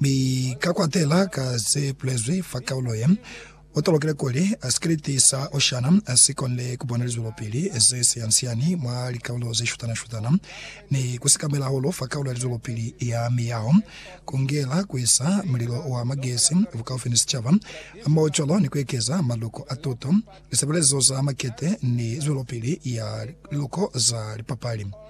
Mi ka kwatela ka ze bulezwi fa kaulo ye, u tolokile kuli sikriti sa Oceana si konile ku bona lizwelopili ze siani-siani mwa likaulo ze shutana-shutana, ni ku sikamela hahulu fa kaulo ya lizwelopili ya miyaho, ku ngela ku isa mulilo wa magezi bukaufi ni sicaba, hamohocwalo ni ku ekeza maluko a tuto, lisebelezo za makete, ni zwelopili ya liluko za lipapali.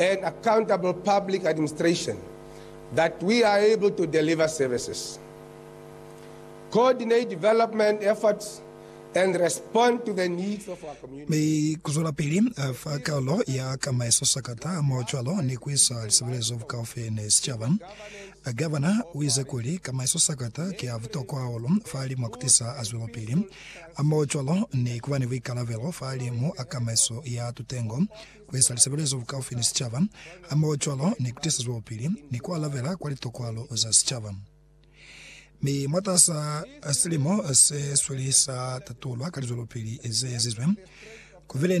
and accountable public administration that we are able to deliver services, coordinate development efforts, and respond to the needs of our communities. Mi kuzwelapili fa karolo ya ka maesosakata mwaocwalo ni kuisa lisebelezo bukaufi ni sicaba, Gavana uize kuli ka maesosakata ki a butokwa hahulu fahali mwa kutisa zwelopili mwaocwalo ni kuba ni buikalabelo fahali mwa ka maeso ya tutengo ku eza lisebelezo bukaufi ni sicaba hamohocwalo ni ku tisa zwelopili ni ku alabela kwa litokwalo za sicaba. Mi mwatasa silimo se sweli sa tatulwa ka lizwelopili ze ezizwe, ku bile ni